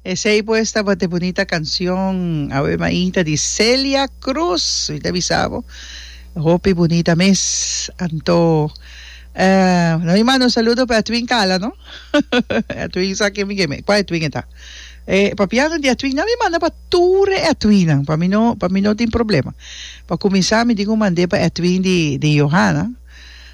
Esey pues tabata e bunita cancion Ave Maita di Celia Cruz. Mi ta bisa bo, hopi bunita mes. Anto, eh, no mi manda un saludo pa Edwin Cala, no? Edwin sa ken mi ke me, kua Edwin e ta. Eh, papianan di Edwin, nan mi manda pa tur e Edwinnan, pa mi no, pa mi no tin problema. Pa cuminsa mi dico mand'e pa Edwin di, di Johanna.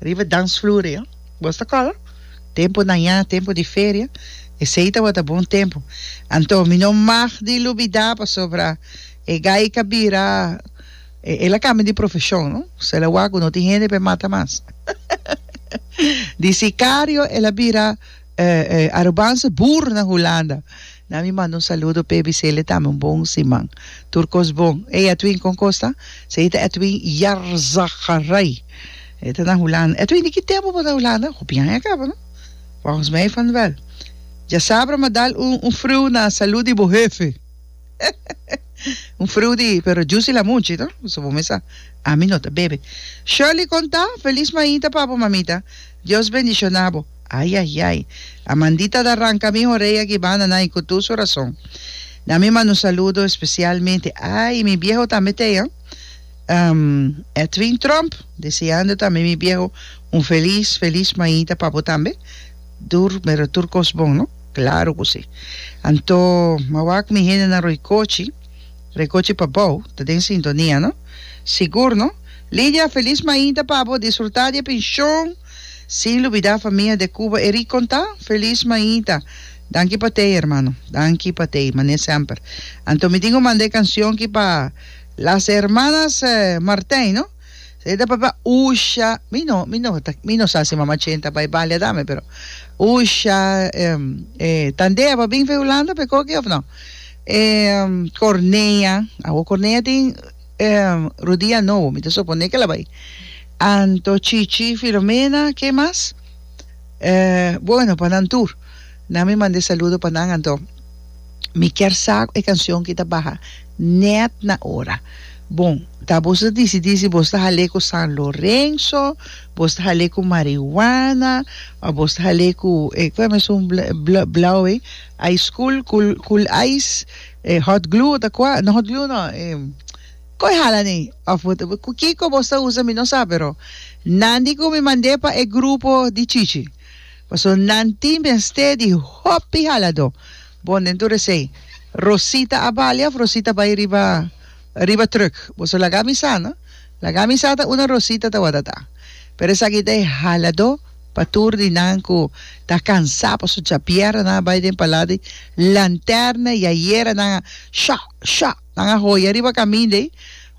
Riba dansvloer e bos ta cola. Tempo naña, tempo di feria. Esey tabata bon tempo. Anto mi no mag di lubida pasobra e gay ka bira, e, el a cambia di profesion, no. So el a wak cu no tin hende pa e mata mas. Di sicario el a bira. Eh eh Arubanse bur na Hulanda na mi manda un saludo p'e bisele tambe un bon siman tur kos bon ey Edwin kon kos ta? se ey ta Edwin Jarzagarij ey ta na Hulanda Edwin di ki tempo bo ta Hulanda hopi aña kaba no volgens mij van wel dja sabra ma dal un un friu na salud di bo hefe un friu di pero jusi la muchi no so bo mes sa ami no ta bebe Shirley kon ta feliz mainta papo mamita. Dios bendiciona bo. Ay ay ay. Amandita ta ranca mi orea ki banda nai cu tur su razon. Na mi manda un saludo especialmente ay mi bieho tambe tey an um Edwin Trump deseando tambe mi bieho un feliz feliz maita pa bo tambe tur mero tur cos bon no claro cu si anto mawak mi hendenan roycochi Recochi pa bou ta den sintonia no? Sigur no? Lidia a felis mainta pa bo disfruta di e penshon sin lubida famia de Cuba e riconta. Felis mainta. Danki pa tei hermano. Danki pa tei mane semper. Anto mi tin cu manda e cancion ki pa Las Hermanas Martijn no? Sey ta papia usha mi no mi no ta mi no sa si mama Chen ta bay balia dame pero usha e tandea pa bin fe Hulanda pe coki of no? E cornea, awo cornea tin e rodia nobo, mi ta supone kela bai. Anto, Chichi, Filomena, ke mas? E bueno pa nan tur. Nan mi manda e saludo pa nan anto. Mi kier sa e cancion ki ta baha net na ora. Bon, ta boso ta dicidi si boso ta hale cu San Lorenzo, boso ta hale cu Marijuana, of boso ta hale cu e cu ta mesun bla bla blau ei. Ice cool cool cool ice e hot glue ta kua no hot glue no e koi hala nei of bo ta ku kiko bo sta usa mi no sa pero nan di ku mi mand'e pa e grupo di chichi paso nan tin mester di hopi haladó bon den tur esei Rosita a bali of Rosita bai riba. Riba truck. Boso laga mi sa no. Laga mi sa ta una rosita ta watatá. Pero esaki ta e haladó pa tur di nan ku ta kansá paso chapiera nan a bai den palá di lanterna i a yera nan a shá shá. Nan a hoya riba kamin dei.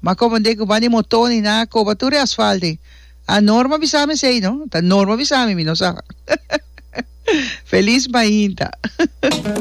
Ma komo den ku ban di motó ni nan a koba tur e asfalt dei. A Norma bisa mi esei no. Ta Norma bisa mi, mi no sa. Felis mainta.